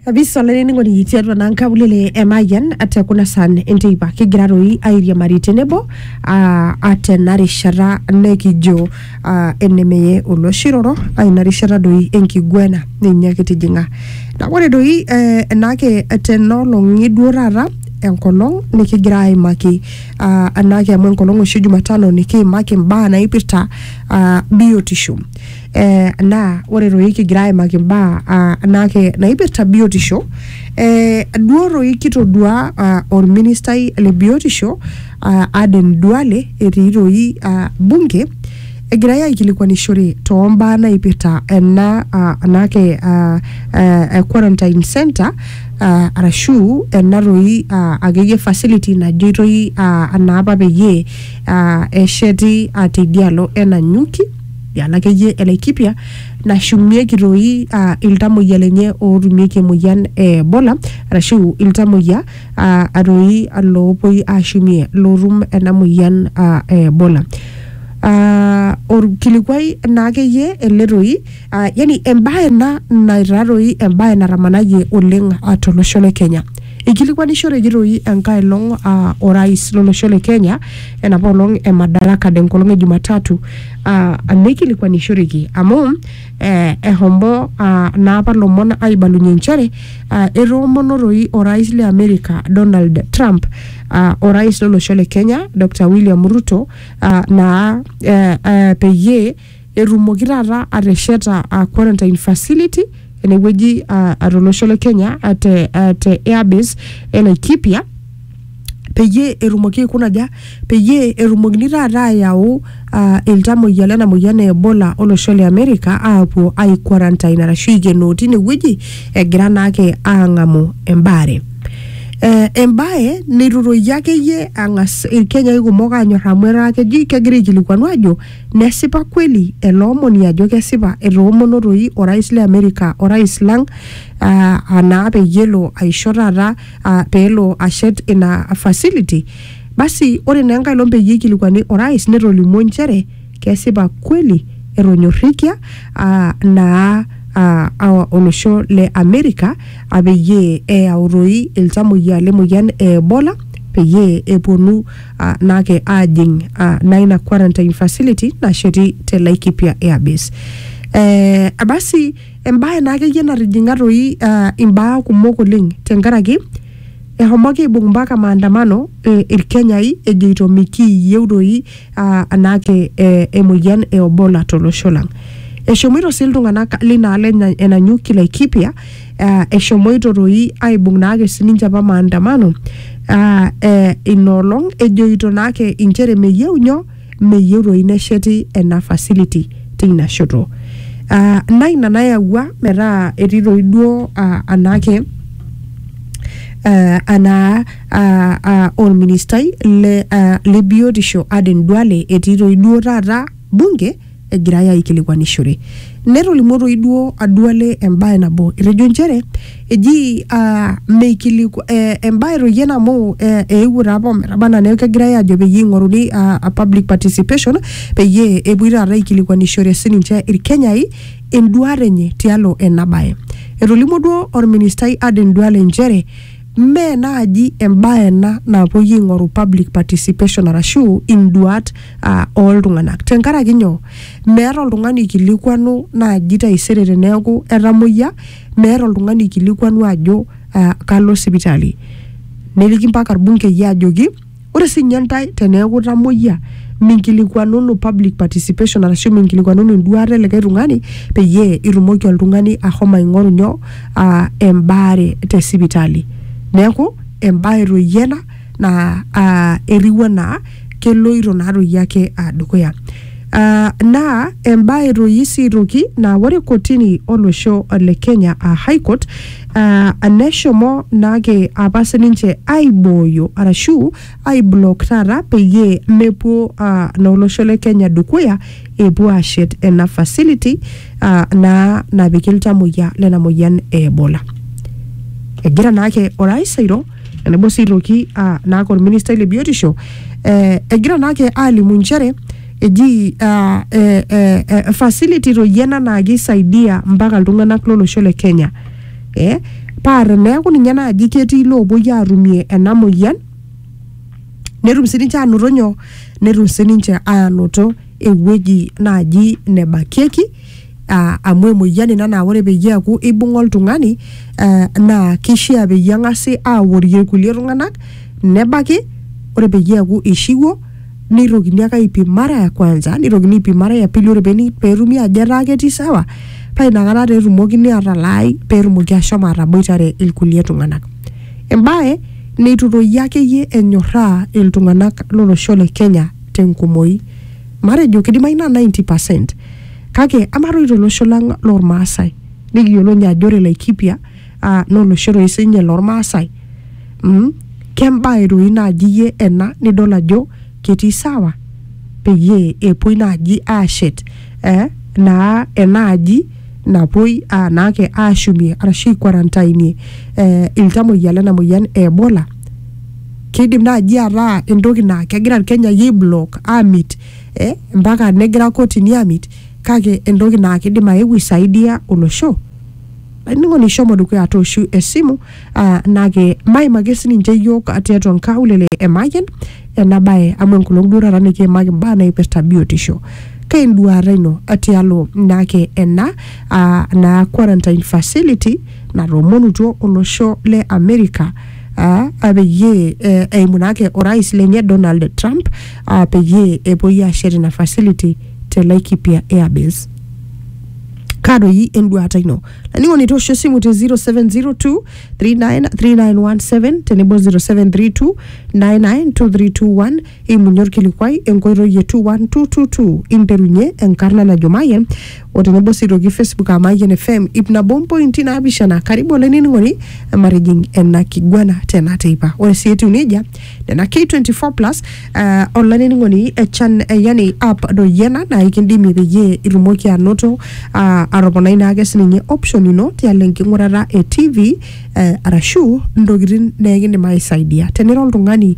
kabisa olainining'oni tiatua naa nkaulele e Mayian te kuna san enteipa kigira toi airiamari tenebo aa aa tena rishata nekijo aa enemeye oloshiroro aa ina rishata doi enkiguena ninye kitijing'a naa ore doi eh, enaake tena olong'i duo taata enkolong nikigira aimaki aa enaake amu enkolong oshi jumatano nikiimaki imbaa naipirta aa biotisho eh, naa ore toi kigira aimaki imbaa ah, naake naipirta biotisho eh, duo toi kitodua ah, orministai le biotisho ah, Aden Duale etii toi ah, bunge egirai aikilikuanishore toombaa naipirta ena ah, anake ah, eh, quarantine center ah, arashu ena toi ah, akeyie facility najoitoi ah, anaapa peyie ah, esheti ah, teidialo enanyuki ana akeyie e Laikipia nashumieki toi ah, iltamoyia lenye ootumieki emoyian e Ebola arashu iltamoyia ah, atoi loopuoi ashumie lootum ena moyian ah, e Ebola. Ah, orkilikuai naa akeyie ele toi ah, yani embae ena naitaa toi embae natamanayie oleng ah, tolosho le Kenya. Eikilikuanishoreki toi enkae olong aa orais lolosho le Kenya enapa olong e Madaraka de nkolong e Jumatatu aa neikilikuanishoreki amu eh, ehomo aa naapa lomon aibalunye nchere aa etoomono toi orais le Amerika Donald Trump aa orais lolosho le Kenya Dr William Ruto aa naa eh, eh, peyie etumoki taata atesheta uh, quarantine facility enewueji uh, tolosho le Kenya uh, te, uh, te airbase e Laikipia peyie etumoki aikuna aja peyie etumokini taata ayau uh, iltamoyia lena moyian e Ebola olosho le America aapuo ai quarantine arashu aikenoo tine wueji egira naake aang'amu embaare. Eh, embae neitutoyio akeyie ang'as irkenyai kumok aanyor amu etaa keji kegira aikilikuanu aajo Nesipa kweli ele omoni ajo kesipa etoomono toi orais le Amerika orais lang uh, anaa peyie elo aisho taata uh, peelo ashet ina facility basi ore naa enkae olong peyie eikilikuani orais netolimuo nchere kesipa kweli etonyorrikia uh, naa uh, olosho le Amerika uh, peyie eyau toi iltamoyia le moyian e Ebola peyie eponu ah, naake aajing ah, naa ina quarantine facility nasheti te Laikipia Airbase. Eh, abasi embae naa akeyie natijing'a toi ah, imbaa kumok oleng tenkaraki ehomoki aibung mpaka maandamano eh, ilkenyai ejoito mikiiyieu doi ah, anaake eh, emoyian e Ebola tolosho lang. Eshomoito sii iltung'anak linaalo enya- enanyuki Laikipia uh, eshomoito toi aibung naake sininche apa maandamano uh, eh, inoolong ejoito naake inchere meyieu nyo meyieu toi nesheti ena facility teina shoto uh, na ina nayawua metaa etii toi duo uh, anaake uh, anaa uh, uh, olministai le, uh, le biotisho Aden Duale etii toi duo taata bunge egirai aikilikuanishore. Netolimuo toi duo Aduale embae nabo etejo nchere eji ah, meikiliku eh, embae toi ena amu eh, eewuo taa apa ometaba anaa neeku kegirai aajo peyie eing'oruni ah, ah, public participation peyie epuoi taata aikilikuanishore sininche Ilkenyai enduaata enye tialo ena bae. Etolimuo duo olministai Aden Duale nchere Mme naaji embae ena napuoi aing'oru public participation arashu induat uh, ooltung'anak. Tenkaraki nyoo? Meeta oltung'ani oikilikuanu naaji taisere teneeku etamoyia, meeta oltung'ani oikilikuanu ajo uh, kalo sipitali. Neliki mpaka irbungei ajoki Ore sii ninye intae teneeku itamoyia minkilikuanunu public participation arashu minkilikuanunu enduaata e likae tung'ani peyie itumoki oltung'ani ahomo aing'oru nyoo aa embaare te sipitali. Neeku embae toi iyie ena naa aa etiu enaa keloito naa toi ake aa dukuya. Aa naa embae toi sii aitoki naa ore kotini olosho le Kenya aa high court Ah, neshomo naake apa sininche aibooyo arashu aiblock taata peyie mepuo ah, naa olosho le Kenya dukuya epuo ashet ena facility ah, naa napiki iltamoyia lena moyian e Ebola. Egira naake orais airo enebo sii aitoki ah, naake orministai le biotisho eh, egira naake alimu nchere Eji uh, eh, eh, eh, facility toi ena naa keisaidia mpaka iltung'anak lolosho le Kenya eh, paa teneeku ninye naaji ketii loopuoi aatumie ena moyian netum sininche aanoto nyoo netum sininche aanoto ewueji naaji nebakieki uh, amu emoyian ina naa ore peyie eaku ibung'a oltung'ani uh, naa kishia peyie eng'asi aworie irkulie tung'anak nebaki ore peyie eaku ishiwuo nitokini ake aipim mara ya kwanza nitokini aipim mara ya pili ore peni- petumi ajo etaa ketii sawa paa inakata taa etumokini atalaai petumoki ashomo ataboitare ilkulie tung'anak embaye neitu toi akeyie enyorraa iltung'anak lolosho le kenya tenkumoi matejo kidimayu naa 90 percent Kake amaa toi tolosho lang lormaasai nikiyiolo ninye ajo ore Laikipia uh, naa olosho toi sinye lormaasai mm? kembae toi naaji iyie ena nidol ajo ketii sawa peyie epuoi naaji aashet eh, naa enaaji napuoi uh, naake aashumie arashu aikwarantainie eh, iltamoyia lena moyian e Ebola kidim naaji ataa entoki naa kegira irkenyai aiblock amit eh, mpaka negira kotini amit kake entoki naa kidim aeu isaidia olosho ainining'oni shomo dukuya atooshu esimu ah, nake maimaki sininche iyiok tiatua nkaulele e Mayian ena bae amu enkolong duo taata nikiimaki imbaa naipirta biotisho keinduaata ino tialo nake ena ah, naa quarantine facility natoomonutuo olosho le America aa peyie eh, eimu naake orais lenye Donald Trump aa peyie epuoi aashet ina facility te Laikipia Airbase. kaa doi enduata ino laning'oni toosho esimu te 0702 393917 tenebo 0732 992321 Eimunye olkilikuai enkoitoi e 21222 interunye enkarna najo Mayian o tenebo sii aitoki Facebook aa Mayian FM ip nabo mpointi naapishana. Karibu olainining'oni matijing ena kiguana tena teipa. Ore sii etiu nejia nena K24 plus eh, olainining'oni eh, chan, eh, yani app doi ena naa ikindimie peyie itumoki anoto ah, atoponai naake sininye option ino tialo enking'urata e TV eh, arashu ntokitin neekindim aisaidia. Tenira oltung'ani